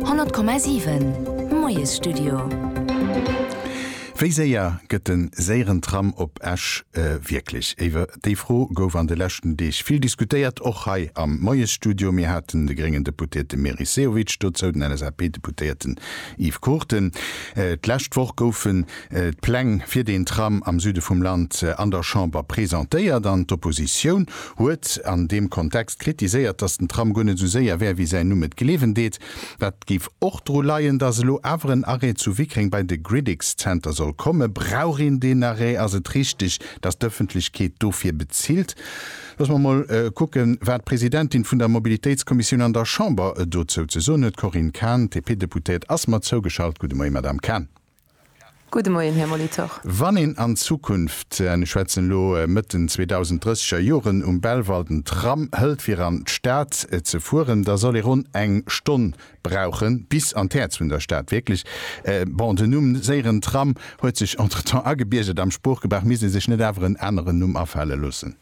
100,7 Moiesstudio. Wéi séier gëtt de séieren Tram op Esch wierklech? Iwwer déi Fro gouf an de leschten Deeg vill diskutéiert, och hei am Moiesstudio. Mir haten de gréngen Deputéierte Meris Sehovic dozou, den LSAP-Deputéierten Yves Cruchten. D'lescht Woch goufen d'Pläng fir deen Tram am Süde vum Land an der Chamber presentéiert an d'Oppositioun huet an deem Kontext kritiséiert, datt den Tram guer net esou séier wär, wéi säin Numm et gleewen deet. Dat géif och dru leien, datt elo awer en Arrêt zu Wickreng bei de Gridix Center soll kommen. Brauch een deen Arrêt? Ass et richteg, datt d'Ëffentlechkeet dofir bezilt? Loosse mer emol kucken, wat d'Presidentin vun der Mobilitéitskommissioun an der Chamber dozou ze soen huet. D'Corinne Cahen, DP-Deputéiert, ass mer zougeschalt. Gudde Moie, Madame Cahen. Gudde Moien, Här Molitor. Wann een an Zukunft, an ech schwätzen elo Mëtt den 2030 er Joren, um Belval den Tram hëlt fir an d'Stad ze fueren, da soll ee ronn eng Stonn brauche bis an d'Häerz vun der Stad. Wierklech, bon, den Numm séieren Tram huet sech entretemps agebiergert am Sproochgebrauch, misst ee sech net awer en aneren Numm afale loossen?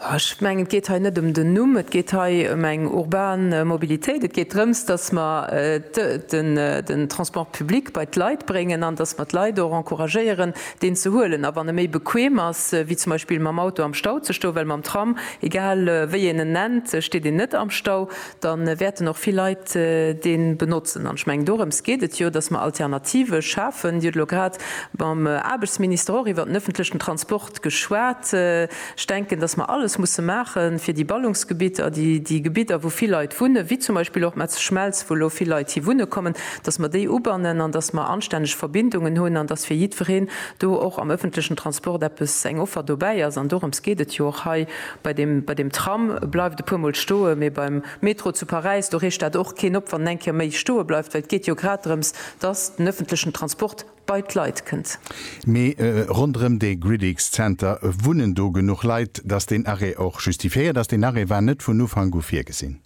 Ech mengen, et geet hei net ëm den Numm, et geet hei ëm eng urban Mobilitéit. Et geet drëms, datt mer den Transport public bei d'Leit bréngen an datt mer d'Leit och encouragéieren, deen ze huelen. A wann e méi bequem ass, wéi zum Beispill mam Auto am Stau ze stoen, well mam Tram, egal wéi een en nennt, steet een net am Stau, da wäerten och vill Leit dee benotzen. An ech mengen, dorëms geet et jo, dass mer Alternative schafen. Dir hutt elo grad mam Aarbechtsminister och iwwert den öffentlichen Transport geschwat. Ech denken, dass mer alles musse maache fir déi Ballungsgebitter, déi Gebitter, wou vill Leit wunnen, wéi zum Beispill och Metzeschmelz, wou elo vill Leit hi wunne kommen, dass mer déi ubannen an dass mer anstänneg Verbindungen hunn an dass fir jiddwereen do och am öffentlichen Transport eppes, eng Offer dobäi ass. An dorëms geet et jo och hei, Bei deem, bei deem Tram bleift e puermol stoen, mee beim Metro zu Paräis, do reegt dat och keen op, wann en eng Kéier méi stoe bleift, well et geet jo grad drëms, dass den ëffentlechen Transport bei d'Leit kënnt. Mee ronderëm dee Gridix Center wunnen do genuch Leit, dass deen Arrêt och justifiéiert ass. Deen Arrêt war net vun Ufank u virgesinn.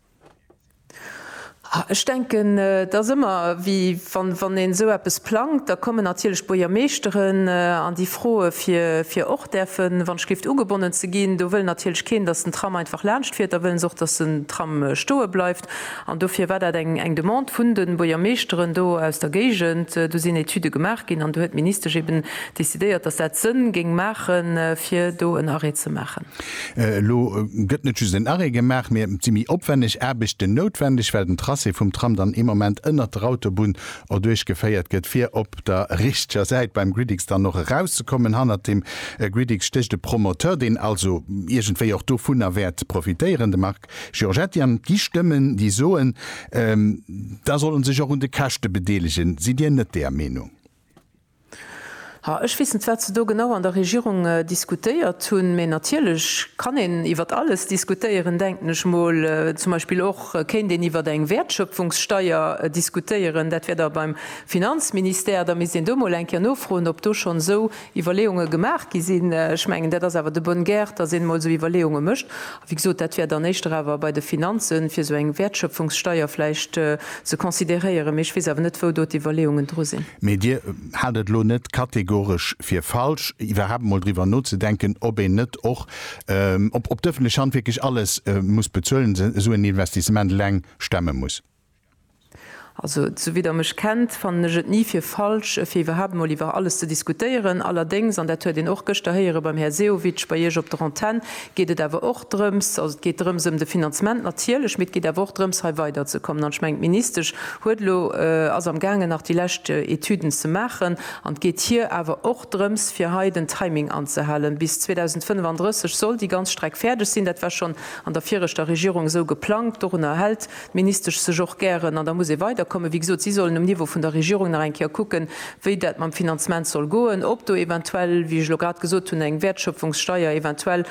Ech denken, et ass ëmmer wéi wann een esou eppes plangt, da kommen natierlech d'Buergermeeschteren an déi froe fir och däerfen, wann ech géif, ugebonnen ze ginn. Do wëll natierlech keen, datt den Tram einfach laanscht fiert. Da wëllen se och, datt den Tram stoe bleift. An dofir war dat eng Demande vun de Buergermeeschteren do aus der Géigend. Do sinn Etüde gemaach ginn an do huet d'Ministesch eeben decidéiert, datt dat Sënn géing maachen, fir do en Arrêt ze maachen. Elo gëtt net just en Arrêt gemaach, mee et si méi opwenneg Aarbechten noutwendeg, well den Tracé vum Tram dann ee Moment ënnert der Autobunn erduerch geféiert gëtt, fir op der richteger Säit beim Gridix dann och erauszekommen. Hannert dem Gridix stécht e Promoteur, deen also iergendwéi och dovunner wäert profitéieren, de Marc Giorgetti. An et gi Stëmmen, déi soen, da soll e sech och un de Käschte bedeelegen. Sidd Dir net deeër Meenung? Ha, ech weess net, wat se do genau an der Regierung diskutéiert hunn, mä natierlech kann een iwwert alles diskutéieren, denken ech mol. Zum Beispill och kéint een iwwert eng Wäertschöpfungssteuer diskutéieren. Dat wär da beim Finanzministère. Da misst een do mol eng Kéier nofroen, ob do schonn esou Iwwerleeunge gemaach gi sinn. Ech mengen, dat ass awer de bonne guerre, dass een emol esou Iwwerleeunge mécht. Wéi gesot, dat wär dann éischter awer bei de Finanzen, fir esou eng Wäertschöpfungssteuer vläicht ze consideréieren. Mee ech weess awer net, wou do d'Iwwerleeungen dru sinn. Mee Dir hat et elo net kategoresch fir falsch, iwwerhaapt emol driwwer nozedenken, ob een net och, ob d'öffentlech Hand wierklech alles muss bezuelen, esou en Investissement eleng stemme muss? Also, sou wéi Der mech kennt, fannen ech et ni fir falsch, fir iwwerhaapt emol iwwer alles ze diskutéieren. Allerdéngs, an dat huet een och gëschter héiere beim Här Sehovic bei Iech op der Antenn, geet et awer och drëms, also et geet drëms ëm de Finanzement natierlech, mee et geet awer och drëms, hei weiderzekommen. An ech mengen, d'Ministesch huet elo, ass am gaangen nach déi lescht Etüden ze maachen. An et geet hir awer och drëms, fir hei den Timing anzehalen. Bis 2035 soll déi ganz Streck fäerdeg sinn. Dat war schonn an der viregter Regierung esou geplangt. Dorunner hält d'Ministesch sech och gären, an da muss ee weiderkommen, wéi gesot, si sollen um Niveau vun der Regierung nach eng Kéier kucken, wéi dat mam Finanzement soll goen, ob do eventuell, wéi ech elo grad gesot hunn, eng Wäertschöpfungssteuer eventuell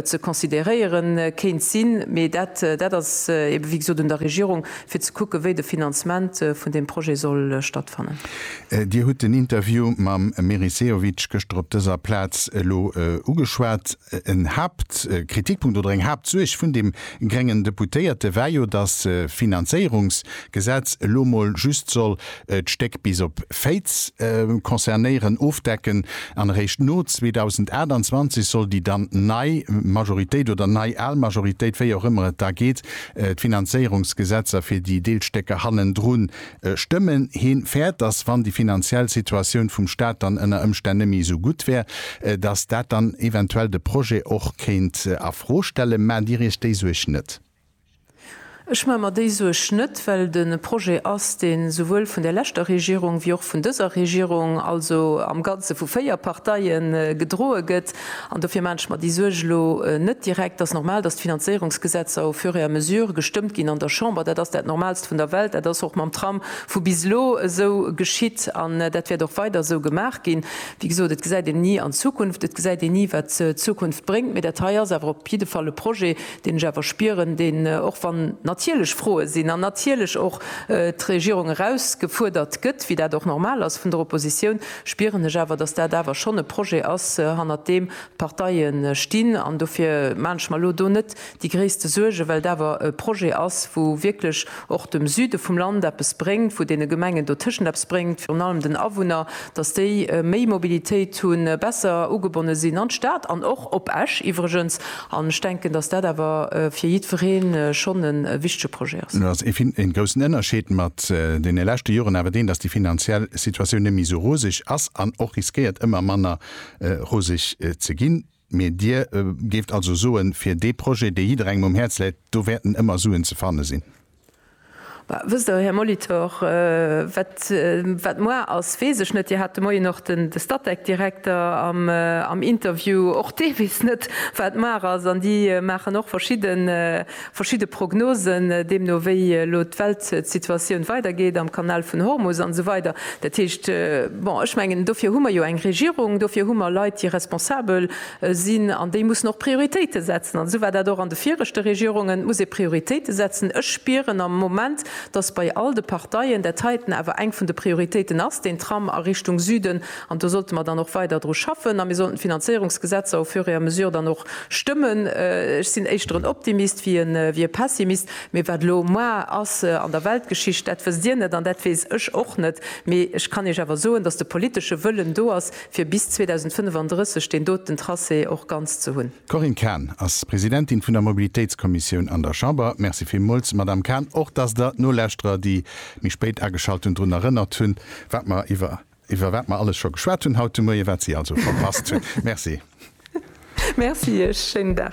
ze considéréiere kéint sinn. Mee dat, dat ass eebe wéi gesot un der Regierung, fir ze kucken, wéi de Finanzement vun deem Projet soll stattfannen. Dir hutt den Interview mam Meris Sehovic gëschter op dëser Plaz elo ugeschwat. En Haaptkritikpunkt oder eng Haaptsuerg vun deem gréngen Deputéierte war jo, datt d'Finanzéierungsgesetz elo mol just soll d'Stéck bis op Féiz concernéieren, ofdecken, an eréischt no 2028 soll déi dann nei Majoritéit oder nei al Majoritéit, wéi och ëmmer et da geet, d'Finanzéierungsgesetzer fir déi Deelstécker hannendrun stëmmen. Hien fäert, dass wann déi finanziell Situatioun vum Staat dann ënner Ëmstänn nëmme esou gutt wär, dass dat dann eventuell de Projet och kéint a Fro stellen. Maacht Dir Iech déi Suerg net? Ech maache mer déi Suerg net, well et e Projet ass, dee souwuel vun där leschter Regierung wéi och vun dëser Regierung, also am Ganze vu véier Parteien, gedroe gëtt. An dofir maan ech mer déi Suerg elo net direkt. Ass normal, dass d'Finanzéierungsgesetzer au fur et à mesure gestëmmt ginn an der Chamber. Dat ass dat Normalst vun der Welt. Dat ass och mam Tram vu bis elo esou geschitt an dat wäert och weider esou gemaach ginn. Wéi gesot, et gesäit een ni an d'Zukunft, et gesäit een ni, wat d'Zukunft bréngt. Mee dat hei ass awer op jidde Fall e Projet, deen ech awer spieren, deen, och wann natierlech Froe sinn an natierlech och d'Regierung erausgefuerdert gëtt, wéi dat och normal ass vun der Oppositioun, spieren ech awer, dass dat awer schonn e Projet ass, hannert deem d'Parteie stinn. An dofir maan ech mer elo do net déi gréisste Suergen, well et awer e Projet ass, wou wierklech och dem Süde vum Land eppes bréngt, wou deene Gemengen dotëschent eppes bréngt, virun allem den Awunner, dass déi méi Mobilitéit hunn, besser ugebonne sinn an d'Stad an och op Esch iwwregens. An ech denken, dass dat awer fir jiddweree schonn e wichtege Projet ass. Elo ass een groussen Ënnerscheed mat deene leschte Joren awer deen, dass déi finanziell Situatioun net méi esou roseg ass an och riskéiert ëmmer manner roseg ze ginn. Mee Dir géift also soen, fir dee Projet, dee jidderengem um Häerz läit, do wäerten ëmmer Suen ze fanne sinn? Wësst Der, Här Molitor, wat moar ass, weess ech net. Dir hat de Moien och de Statec-Direkter am Interview. Och dee weess net, wat moar ass. An déi maachen och verschidde Prognosen deemno, wéi elo d'Weltsituatioun weidergeet am Kanal vun Hormus an esou weider. Dat heescht, bon, ech mengen, dofir hu mer jo eng Regierung, dofir hu mer Leit, déi responsabel sinn an déi mussen och Prioritéite setzen an esou war dat och an de viregte Regierungen, et muss ee Prioritéite setzen. Ech spieren am Moment, datt bei all de Parteien dat heiten awer eng vun de Prioritéiten ass, deen Tram a Richtung Süden, an do sollte mer dann och weider dru schaffen a mir sollten d'Finanzéierungsgesetzer au fur et à mesure dann och stëmmen. Ech sinn éischter en Optimist wéi e Pessimist, mee wat elo moar ass an der Weltgeschicht, dat wësst Dir net an dat weess ech och net, mee ech kann Iech awer soen, datt de politesche Wëllen do ass, fir bis 2035 deen doten Tracé och ganz ze hunn. D'Corinne Cahen ass Presidentin vun der Mobilitéitskommissioun an der Chamber. Merci villmools, Madamm Cahen, och dass Der d'Nolauschterer, déi méi spéit ageschalt hunn, drun erënnert hunn, wat mer iwwer, iwwer wat mer alles scho geschwat hunn haut de Moie, wat si also verpasst hunn. Merci. Merci Iech. Schéinen Dag.